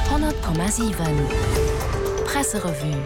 100,7 Presserevue.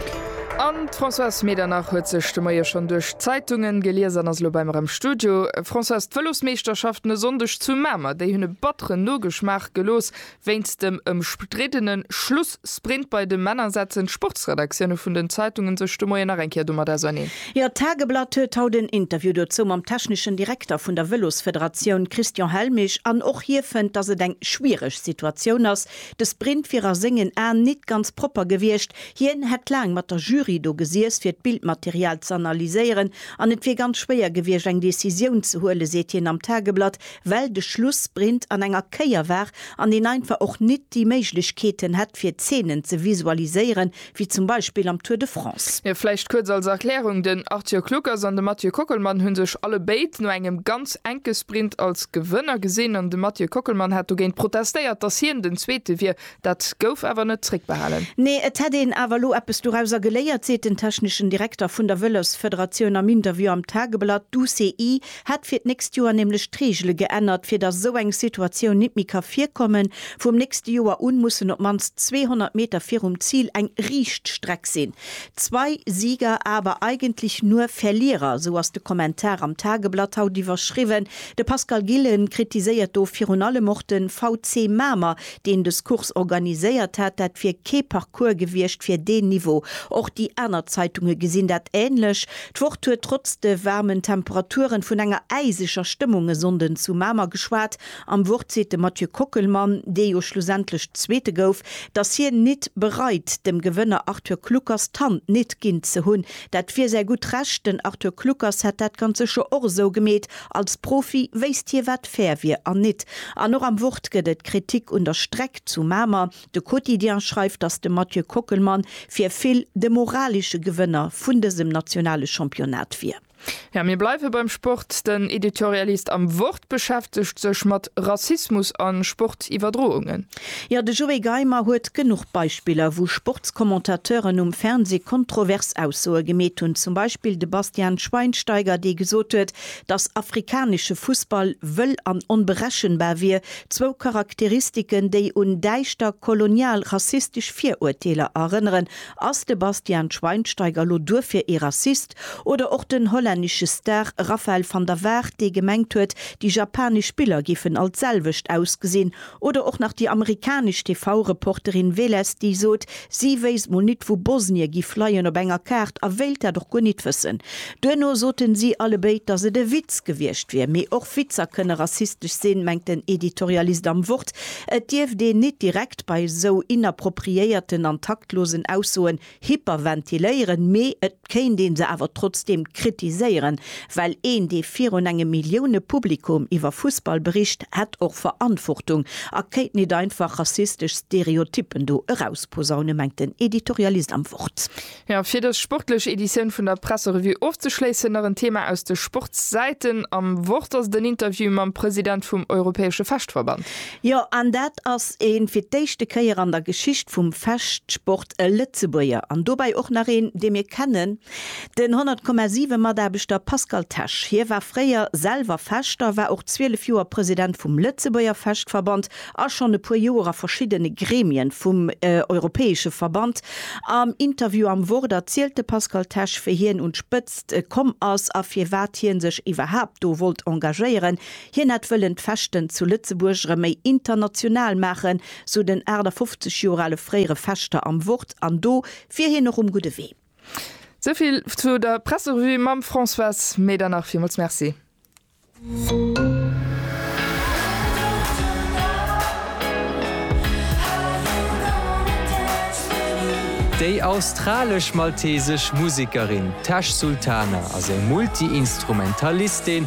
An d'Françoise Medernach huet sech de Moie schonn duerch d'Zeitunge gelies an ass elo bei mer am Studio. Françoise, d'Vëlosmeeschterschaften e Sonndeg zu Mamer, déi hunn e batteren Nogeschmaach gelooss wéinst dem ëmstriddene Schluss. Sprint Bei de Männer setzen d'Sportsredaktioune vun den Zeitungen sech de Moien nach eng Kéier domat auserneen. Jo, d'Tageblatt huet haut en Interview dozou mam techneschen Direkter vun der Vëlosfederatioun Christian Helmich an och hie fënnt, datt et eng schwiereg Situatioun ass. De Sprint wier a sengen Aen nit ganz propper gewiescht. Hien hätt laang mat der Jury do gesiess, fir d'Bildmaterial z'analyséieren an et wier ganz schwéier gewiescht, eng Decisioun ze huelen, seet hien am Tageblatt. well de Schlussprint an enger Kéier war an een einfach och nit déi Méiglechkeeten hätt fir Zeenen ze visualiséieren wéi zum Beispill am Tour de France. Jo, vläicht kuerz als Erklärung, den Arthur Kluckers an de Mathieu Kockelmann hu sech allebéid no engem ganz enke Sprint als Gewënner gesinn an de Mathieu Kockelmann hat dogéint protestéiert, dass hien den Zweete wier. Dat gouf awer net zréckbehalen. Nee, et hätt een awer elo eppes dorauser geléiert, seet den techneschen Direkter vun der Vëlosfederatioun am Interview am Tageblatt. D'UCI hätt fir d'nächst Joer nämlech d'Reegele geännert, fir datt esou eng Situatioun nit méi ka virkommen. Vum nächste Joer un mussen op d'mannst 200 Meter virum Zil eng riicht Streck sinn. Zwei Sieger, aber eigentlich nur Verlierer, esou ass de Kommentar am Tageblatt haut iwwerschriwwen. De Pascal Gillen kritiséiert do virun allem och de VC Mamer, deen des Course organiséiert hat, dat wier kee Parcours gewiescht fir deen Niveau. Och déi aner Zeitunge gesinn dat änlech. D'Wort huet trotz de waarmen Temperaturen vun enger äiseger Stëmmung e Sonnden zu Mamer geschwat. Am Wort seet de Mathieu Kockelmann, dee jo schlussendlech Zweete gouf, datt hien nit bereit, dem Gewënner Arthur Kluckers d'Hand nit ginn ze hunn. Dat wier säi gutt Recht, den Arthur Kluckers hätt dat ganz sécher och esou gemeet. Als Profi wéisst hie wat fair wier an nit. An och am Wort gëtt et Kritik un der Streck zu Mamer. De Quotidien schreift, datt de Mathieu Kockelmann fir vill de moralesche Gewënner vun dësem nationale Championnat wier. Jo, mir bleiwe beim Sport. Den Editorialist am Wort beschäftegt sech mat Rassismus a Sportiwwerdroungen. Jo, de Joé Geimer huet genuch Beispiller, wou Sportscommentateuren um Fernseh kontrovers Aussoe gemeet hunn. Zum Beispill de Bastian Schweinsteiger, dee gesot huet, dass afrikanesche Fussball wëll an onberechenbar wier, zwou Charakteristiken, déi un däischter kolonial rassistesch Virurteeler erënneren. Ass de Bastian Schweinsteiger lo duerfir ee Rassist? Oder och den hollännesche Star Raphael van der Vaart, dee gemengt huet, déi japanesch Biller giffen all d'selwecht ausgesinn, Oder och nach déi amerikanesch TV-Reporterin Veles, déi sot, si wéisst mol nit wou Bosnie giff leien op enger Kaart a wéilt dat och guer nit wëssen. Duerno soten si allebéid, datt et e Witz gewiescht wier. Mee och Witzer kënne rassistesch sinn, mengt den Editorialist am Wort. Et dierft een nit direkt bei esou inappropriéierten an taktlosen Aussoen Hyperventiléieren, mee et kéint ee se awer trotzdeem kritiséieren, well een, dee virun engem Millioune-Publikum iwwer Fussball bericht, hätt och Verantwortung a kéint nit einfach rassistesch Stereotyppen do erausposaune, mengt den Editorialist am Wort. Jo, fir dës sportlech Editioun vun der Presserevue ofzeschléissen, nach en Thema aus de Sportssäiten. Am Wort ass et en Interview mam President vum europäesche Fechtverband. Jo, an dat ass een fir d'éischte Kéier an der Geschicht vum Fechtsport. e Lëtzebuerger an dobäi och nach een, dee mir kennen, den 100,7 Mataarbechter Pascal Tesch. Hie war fréier selwer Fechter, war och 12 Joer President vum Lëtzebuerger Fechtverband a schonn e puer Joer a verschiddene Gremien vum europäesche Verband. Am Interview am Wort erzielt de Pascal Tesch, wéi hien un d'Spëtzt komm ass a firwat hie sech iwwerhaapt do wollt engagéieren. Hien hätt wëllen d'Fechten zu Lëtzebuerg erëm méi international maachen, sou den 58 Joer ale fréiere Fechter am Wort, an do wier hien och um gudde Wee. Souvill zu der Presserevue mam Françoise Medernach. Villmools Merci. Déi australesch-maltesesch Musekerin Tash Sultana ass eng Multi-Instrumentalistin,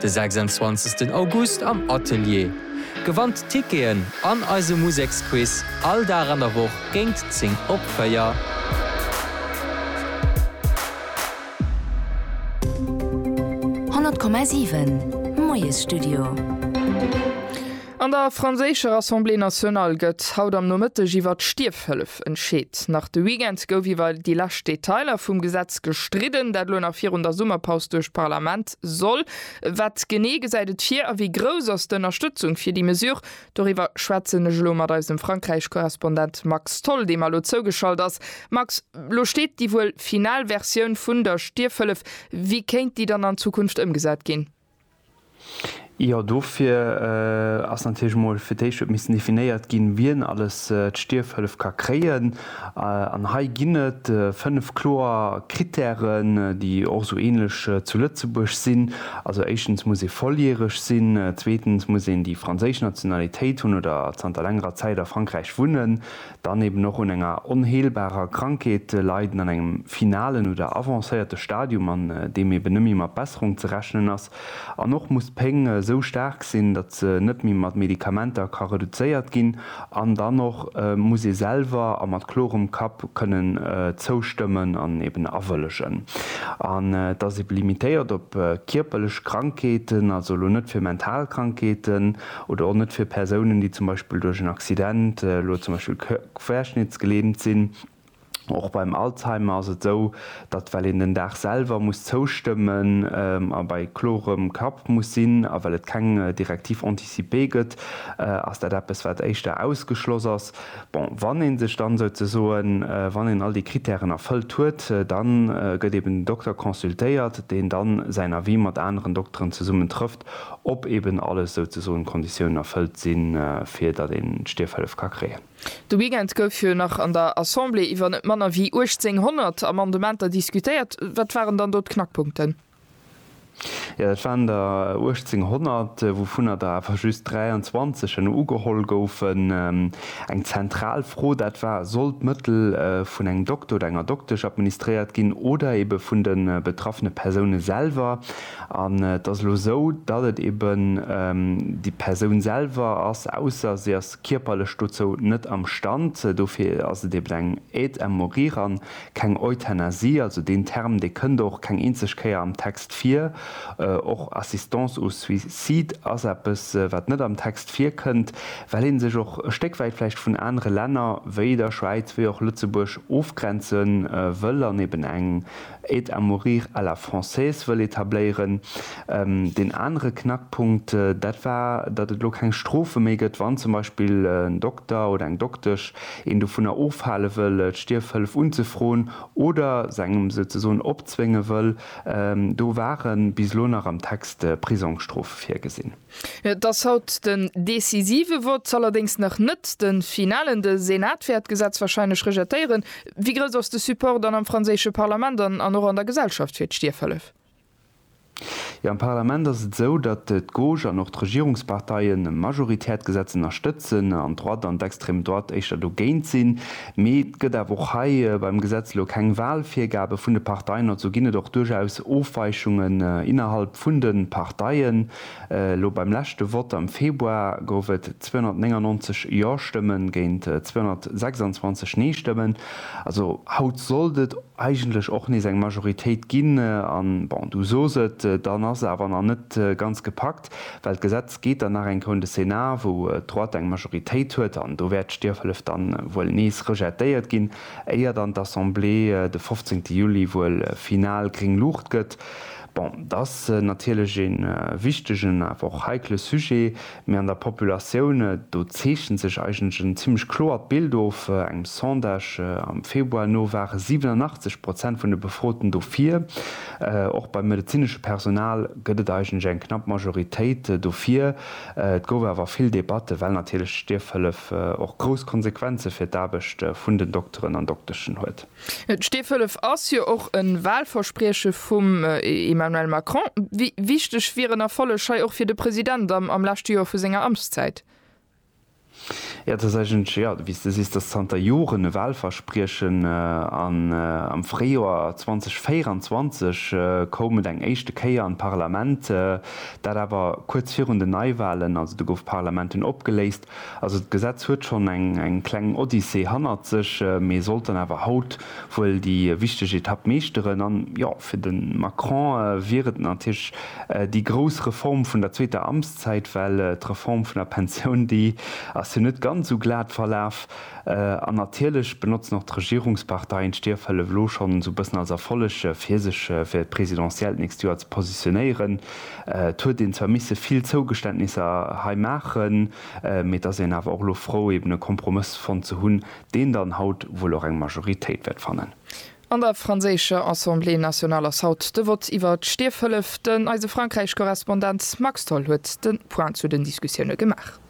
De 26 August am Atelier. Gewannt Ticketen an eise Museksquiz all Dag an der Woch géint 10 op 4. An der franséischer Assemblée nationale gëtt haut am Nomëtteg iwwer d'Stierfhëllef entscheet. Nach de Weekend gouf iwwer déi lescht Detailer vum Gesetz gestridden, dat elo nach virun der Summerpaus duerch d'Parlament Soll. Wat genee gesäit et vir a wéi grouss ass d'Ënnerstëtzung fir déi Mesure? Doriwwer schwätzen ech elo mat eisem Frankräich-Korrespondent Max Tholl, deem elo zougeschalt ass. Max, lo steet déi wuel final Versioun vun der Stierfhëllef. Wéi kéint déi dann an Zukunft ëmgesat ginn? Jo, dofir ass natierlech emol fir d'éischt huet missen definéiert ginn, wien alles d'Stierfhëllef ka kréien. An hei ginn et fënnf kloer Krittären, déi och esou änlech zu Lëtzebuerg sinn. Also éischtens muss ee volljäreg sinn, zweetens muss een déi franséisch Nationalitéit hunn oder zanter längerer Zäit a Frankräich wunnen, dann eben och un enger onheelbarer Krankheet leiden, an engem finalen oder avancéierte Stadium, an deem eben net méi mat Besserung ze rechnen ass, An och muss d'Péng esou staark sinn, datt se net méi mat Medikamenter ka reduzéiert ginn. An dann och muss ee selwer a mat klorem Kapp kënnen zoustëmmen an eben awëllegen. An et ass ebe limitéiert op kierperlech Krankheeten, also elo net fir mental Krankheeten oder och net fir Persounen, déi zum Beispill duerch en Accident elo zum Beispill querschnittsgelähmt sinn. Och beim Alzheimer ass et esou, datt well een den Dag selwer muss zoustëmmen a bei klorem Kapp muss sinn a well et keng Directive anticipée gëtt, ass dat eppes wat éischter ausgeschloss ass. Bon, wann ee sech dann souzesoen, wann een all déi Kritären erfëllt huet, da gëtt eben den Dokter consultéiert, deen da säin Avis mat aneren Dokteren zesummen trëfft, ob eben alles souzesoen d'Konditiounen erfëllt sinn, fir datt een d'Stierfhëllef ka kréien. De Weekend gouf jo nach an der Assemblée iwwer net manner wéi 1.800 Amendementer diskutéiert. Wat waren dann do d'Knackpunkten? Jo, dat waren der 1.800, wouvunner der awer just 23 elo ugeholl goufen. Eng zentral Fro dat war, Soll d'Mëttel vun engem Dokter oder enger Doktesch administréiert ginn oder ebe vun de betraffene Persoune selwer? An et ass elo esou, datt et eben déi Persoun selwer ass, ausser se ass kierperlech dozou net am Stand, dofir ass et eben eng Aide à mourir an keng Euthanasie, also deen Term dee kënnt och keng eenzeg Kéier am Text vir. Och Assistance au suicide ass eppes wat net am Text virkënnt, well ee sech och e Stéck wäit vläicht vun anere Länner wéi der Schwäiz, wéi och Lëtzebuerg ofgrenze wëll an eben eng Aide à mourir à la française wëll etabléieren. Deen anere Knackpunkt, dat war, datt et elo keng Strofe méi gëtt, wann zum Beispill en Dokter oder eng Doktesch een dovunner ofhale wëll, d'Stierfhëllef unzefroen oder se engem souzesoen opzwénge wëll. Do ware bis elo nach am Text Prisongsstrofe virgesinn. Et ass haut den decisive Vott, allerdéngs nach net de finalen. De Senat wäert d'Gesetz warscheinlech rejetéieren. Wéi grouss ass de Support dann am franséische Parlament an och an der Gesellschaft fir d'Stierfhëllef? Jo, am Parlament ass et esou, datt d'Gauche an och d'Regierungsparteien majoritär d'Gesetz ënnerstëtzen an d'Droite an d'extrême droite éischter dogéint sinn. Mee et gëtt awer och hei beim Gesetz elo keng Walvirgabe vun de Parteien, also ginn et och duerchaus Ofweichungen innerhalb vun de Parteien. Elo beim leschte Vott am Februar gouf et 299 Jo-Stëmme géint 226 Nee-Stëmmen. Also haut sollt et eigentlech och nees eng Majoritéit ginn. An bon, du sos et, dann ass se awer nach net ganz gepackt. well d'Gesetz geet dann nach eng Round de Sénat, wou d'Droite eng Majoritéit huet, an do wäert d'Stierfhëllef dann wuel nees rejetéiert ginn, éier dann d'Assemblée de 15 Juli wuel final gréng Luucht gëtt. Bon, et ass natierlech ee wichtegen, awer och heikle Sujet, mee an der Populatioun do zeechent sech eigentlech en zimmlech kloert Bild of. Engem Sondage am Februar no ware 87 Prozent vun de Befroten dofir. Och beim medezinesche Personal gëtt et eigentlech eng knapp Majoritéit dofir. Et gouf awer vill Debatte, well natierlech d'Stierfhëllef och grouss Konsequenze fir d'Aarbecht vun den Dokteren an Dokteschen huet. D'Stierfhëllef ass jo och e Wahlversprieche vum Emmanuel Macron. Wéi wichteg wier en Erfolleg hei och fir de President am leschte Joer vu senger Amtszäit? Jo, et ass eigentlech, jo, wéi s de sees, et ass zanter Joren e Wahlverspriechen. An am Fréijoer 2024 koum et eng éischte Kéier an d'Parlament, dat awer kuerz virun den Neiwahlen. Also do gouf d'Parlament dunn opgeléist. Also d'Gesetz huet schonn eng kleng Odyssee hannert sech, mee sollt dann awer haut wuel déi wichteg Etapp meeschteren. An jo, fir de Macron wier et natierlech déi grouss Reform vun der zweeter Amtszäit. Zäit, well d'Reform vun der Pensioun, déi ass jo net ganz esou glat verlaf. An natierlech benotzen och d'Regierungsparteien d'Stierfhëllef elo schonn esou e bëssen als Erfolleg, fir sech fir d'Presidentielle d'nächst Joer ze positionéieren. Et huet een zwar misse vill Zougeständnisser hei maachen, mee et ass een awer och elo frou, eben e Kompromëss fonnt ze hunn, deen dann haut wuel och eng Majoritéit wäert fannen. An der franséischer Assemblée nationale ass haut de Vott iwwer d'Stierfhëllef. Den eise Frankräich-Korrespondent Max Tholl huet de Point zu den Diskussioune gemaach.